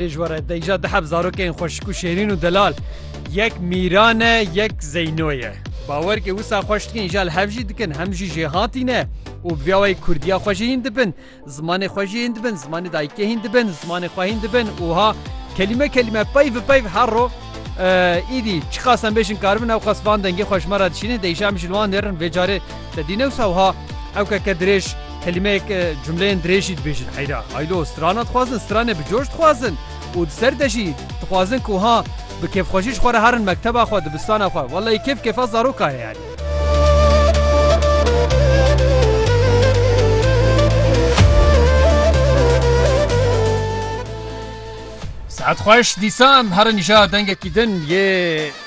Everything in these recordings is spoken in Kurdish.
Pêşwere deyja dihep zarokên xweşik û şêrîn û delal yek Mîran e yek Zeyno ye. Bawer ke wisa xweş dikin îja li hev jî dikin hem jî jêhatî ne û bi vîya wayî kurdiya xwe jî hîn dibin, zimanê xwe jî hîn dibin, zimanê dayikê hîn dibin, zimanê xwe hîn dibin û ha kelîme kelîme peyv bi peyv her ro îdî çiqas em bêjin karibin ewqas van dengê xwe ji me re dişînin deyja em jî li wan nêrin vê carê te dî ne wisa wiha ewkeke dirêj Kelimeyek cumleyên dirêj jî dibêjin heyra, haylo, strana dixwazin, stranê bi coş dixwazin û di ser de jî dixwazin ku ha bi kêfxwejî ji xwe re herin mekteba xwe, dibistana xwe. Wellahî kêf kêfa zaroka ye yanî. Saet xweş dîsa em herin îşa dengekî din yê.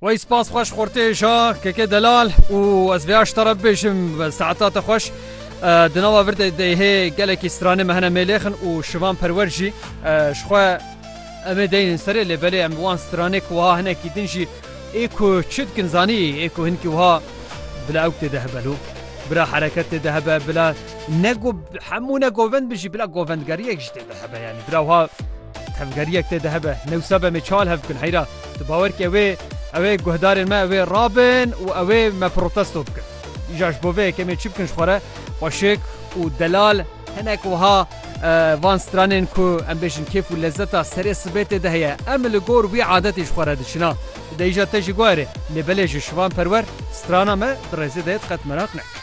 Wey spas xweş xortê şa keke delal û ez vê aşta re bibêjim saeta te xweş. Di nava vir de deyhê gelekî stranê me hene mêlêxin û şivan perwer jî ji xwe em ê deynin serê lê belê em wan stranê ku wiha hinekî din jî ê ku çi dikin zanî ê ku hinkî wiha bila ewk tê de hebe lû. Bila hereket tê de hebe bila ne ku hemû ne govend bin jî bila govendgeriyek jî tê de hebe yanî bila wiha tevgeriyek tê de hebe newsa be me çal hev bikin heyra. Tu bawer ke wê ew ê guhdarên me wê rabin û ew ê me protesto bikin. Îja ji bo vê yekemê çi bikin ji xwe re xweşik û delal hinek wiha van stranên ku em bêjin kêf û lezzeta serê sibê tê de heye. Em li gor wî adetê ji xwe re diçina. Tu dê îja te jî guherê. Lê belê ji şivan perwer strana me di rêzê de ye tu qet meraq nekir.